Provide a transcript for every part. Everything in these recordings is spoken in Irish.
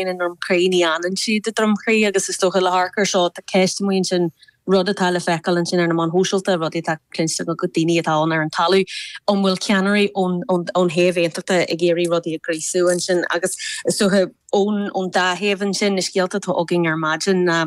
i nDroim Crí, ní fhanann siad i nDroim Crí agus is dócha le hamharc air seo, tá ceist amuigh ansin, rud atá le feiceáil ansin ar na meáin shóisialta, rudaí atá cluinste ag daoine atá ann ar an talamh, an bhfuil ceannairí ón ón thaobh aontachtach ag iarraidh rudaí a ghríosú ansin agus is dócha ón ón dá thaobh ansin, na scéalta atá againn ar maidin ná.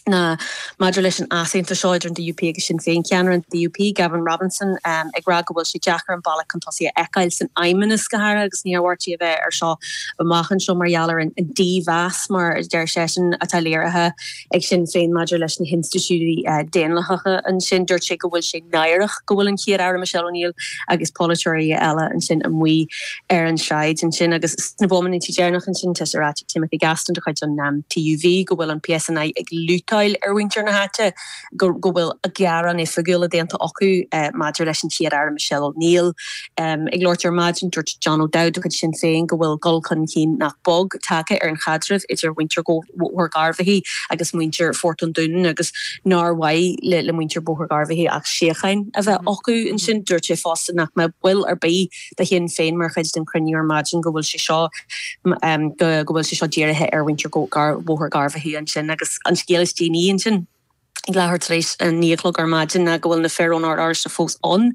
ná maidir leis an easaontas seo idir an DUP agus Sinn Féin, ceannaire an DUP, Gavin Robinson, ag rá go bhfuil sé deacair an bealach chun tosaigh a fheiceáil san Fheidhmeannas go háirithe agus na hiarmhairtí a bheidh air seo amach anseo mar gheall ar an dímheas, mar a deir seisean, atá léirithe ag Sinn Féin maidir leis na hinstitiúidí daonlathacha ansin. Dúirt sé go bhfuil sé náireach go bhfuil an Chéad-Aire Michelle O'Neill agus polaiteoirí eile ansin amuigh, ar an sráid ansin agus sna bomaintí deireanacha ansin tá sé ráite ag Timothy Gaston de chuid an TUV go bhfuil an PSNI ag lútáil ar mhuintir na háite, go bhfuil gearáin oifigiúla déanta acu maidir leis an Chéad-Aire Michelle O'Neill. Ag labhairt ar maidin dúirt John O'Dowd de chuid Sinn Féin go bhfuil dul chun cinn nach beag tagtha ar an chaidreamh idir mhuintir Bhóthar Gharbhachaidh agus muintir Phort an Dúnáin agus nár mhaith le muintir Bhóthar Gharbhachaidh ach síocháin a bheith acu ansin. Dúirt sé fosta nach mbeadh ball ar bith de Shinn Féin mar chuid den chruinniú ar maidin go bhfuil sé seo go bhfuil sé seo dírithe ar mhuintir Bhóthar Gharbhachaidh ansin agus an scéal is déanaí ansin ag leathuair tar éis a naoi a chlog ar maidin ná go bhfuil na fir ón Ord Oráisteach fós ann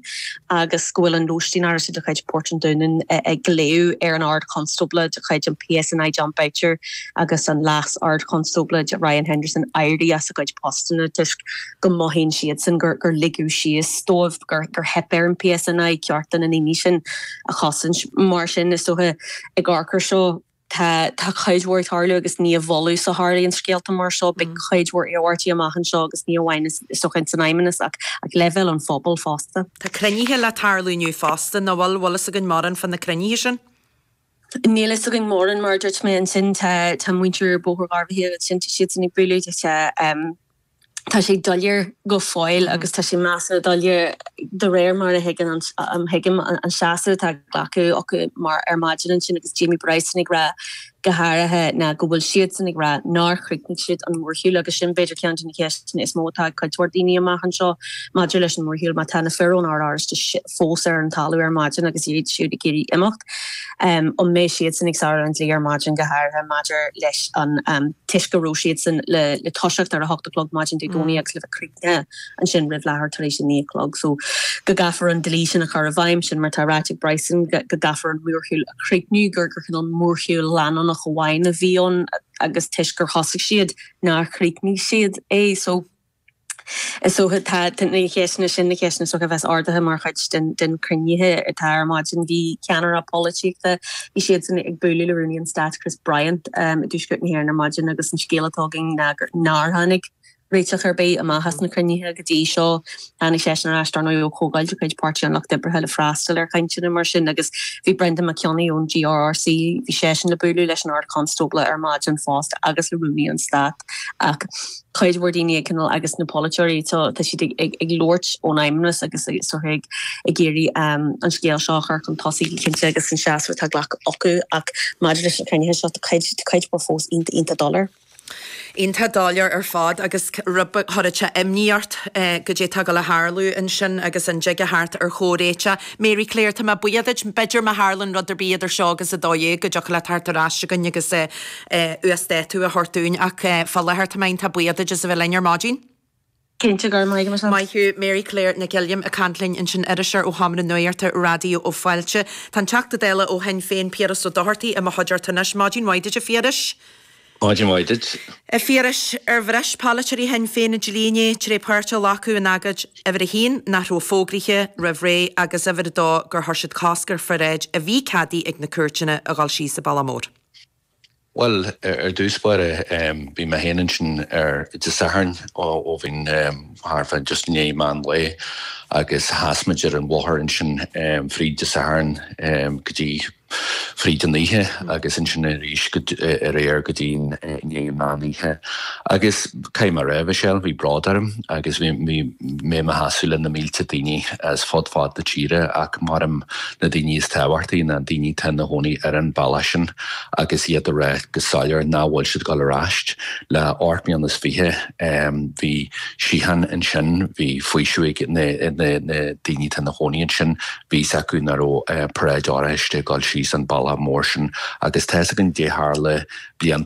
agus go bhfuil an lóistín Oráisteach de chuid Port an Dúnáin ag glaoch ar an Ard Chonstábla de chuid an PSNI Jon Boutcher agus an Leas Ard Chonstábla Ryan Henderson éirí as a gcuid postanna toisc go mothaíonn siadsan gur ligeadh síos dóibh. gur theip ar an PSNI cearta na ndaoine sin a chosaint. Mar sin, is dócha, ag amharc air seo, tá cuid mhór ag tarlú agus ní i bhfolús a tharlaíonn scéalta mar seo. Beidh cuid mhór iarmhairtí amach anseo agus ní amháin, is dócha, ins an Fheidhmeannas ach ag leibhéal an phobail fosta. Tá cruinnithe le tarlú inniu fosta, nó bhfuil? Bhfuil fhios againn mórán fá na cruinnithe sin? Níl fhios againn mórán, mar a dúirt mé. Ansin, tá muintir Bhóthar Gharbhachaidh, siadsan ag bualadh, is dócha. tá sé doiléir go fóill agus tá sé measartha doiléir de réir mar a thuigim an seasamh atá glactha acu mar ar maidin ansin agus Jamie Bryson ag rá go háirithe ná go bhfuil siadsan ag rá nár chríochnaigh siad an mórshiúl agus sin b'fhéidir ceann de na ceisteanna is mó atá ag cuid mhór daoine amach anseo maidir leis an mórshiúl má tá na fir ón Ord Oráisteach fós ar an talamh ar maidin agus iad siúd ag iarraidh imeacht. Em, An mbeidh siadsan ag sárú an dlí ar maidin, go háirithe maidir leis an toisc go raibh siadsan le toiseacht ar a hocht a chlog maidin Dé Domhnaigh agus le bheith críochnaithe ansin roimh leathuair tar éis a naoi a chlog so go gcaithfear an dlí sin a chur i bhfeidhm? Sin mar atá ráite ag Bryson go gcaithfear an mórshiúl a chríochnú, gur cineál mórshiúl leanúnach amháin a bhí ann agus toisc gur thosaigh siad nár chríochnaigh siad é so. Is dócha, tá na ceisteanna sin, na ceisteanna is dócha a bheas ardaithe mar chuid de na cruinnithe atá ar maidin. Bhí ceannairí polaitíochta, bhí siadsan ag bualadh le Rúnaí an Stáit, Chris Bryant, i dTuaisceart na hÉireann ar maidin agus an scéal atá againn ná gur, nár tháinig réiteach ar bith amach as na cruinnithe go dtí seo. Tháinig seisean ar ais, dar ndóigh, ó chomhdháil de chuid Páirtí an Lucht Oibre le freastal ar chainteanna mar sin agus bhí Brendan Mac Cionnaith ón GRRC, bhí seisean le bualadh leis an Ard-Chonstábla ar maidin fosta agus le Rúnaí an Stáit ach, cuid mhór daoine ag coinneáil agus na polaiteoirí tá siad ag labhairt ón Fheidhmeannas agus sórt ag iarraidh an scéal seo a chur chun tosaigh go cinnte agus an seasamh atá glactha acu ach maidir leis na cruinnithe seo tá cuid mhór fós iontach, iontach doiléir. Iontach doiléir ar fad agus rud a chuirfeadh imní ort caidé tá ag gabháil a tharlú ansin agus an dtig a theacht ar chomhréiteach. Mary Claire, tá mé buíoch duit, b'fhéidir má tharlann rud ar bith idir seo agus a dó dhéag go dtiocfadh leat a theacht ar ais chugainn agus uasdátú a thabhairt dúinn ach fá láthair tá mé iontach buíoch duit as a bheith linn ar maidin. Cinnte go raibh maith agat. Maith thú Mary Claire Nic Uilliam ag caint linn ansin iriseoir ó Sheomra Nuachta Raidió Fáilte. Tá an Teachta Dála ó Shinn Féin Piaras Ó Dochartaigh i mo chuideachta anois. Maidin mhaith duit, a Phiarais. Maidin mhaith duit. A Phiarais, ar bhris polaiteoirí Shinn Féin an dlí inné tar éis páirt a ghlacadh in agóid uimhir a haon nach raibh fógraithe roimh ré agus uimhir a dó gur chuir siad cosc ar pharáid a bhí ceadaithe ag na cúirteanna a dhul síos an bealach mór? Bhuel, ar dtús báire, bhí mé féin ansin ar Dé Sathairn ó bhí thart fá just i ndiaidh meán lae agus sheas muid ar an bhóthar ansin fríd Dé Sathairn go dtí fríd an oíche agus ansin arís aréir go dtí i ndiaidh an meán oíche agus Caithfidh mé a rá, a Mhichelle, bhí bród orm agus bhí mé i mo sheasamh le na mílte daoine as fud fad na tíre ach mar a deirim na daoine is tábhachtaí, na daoine atá ina gcónaí ar an bhealach sin agus iad ag rá go soiléir nach bhfuil siad ag dul ar ais. Le ocht mbliana is fiche bhí síocháin ansin, bhí faoiseamh ag na daoine atá ina gcónaí ansin, bhí 's acu nach raibh paráid oráiste ag dul síos an bealach mór sin agus tá's againn caidé tharla blianta ó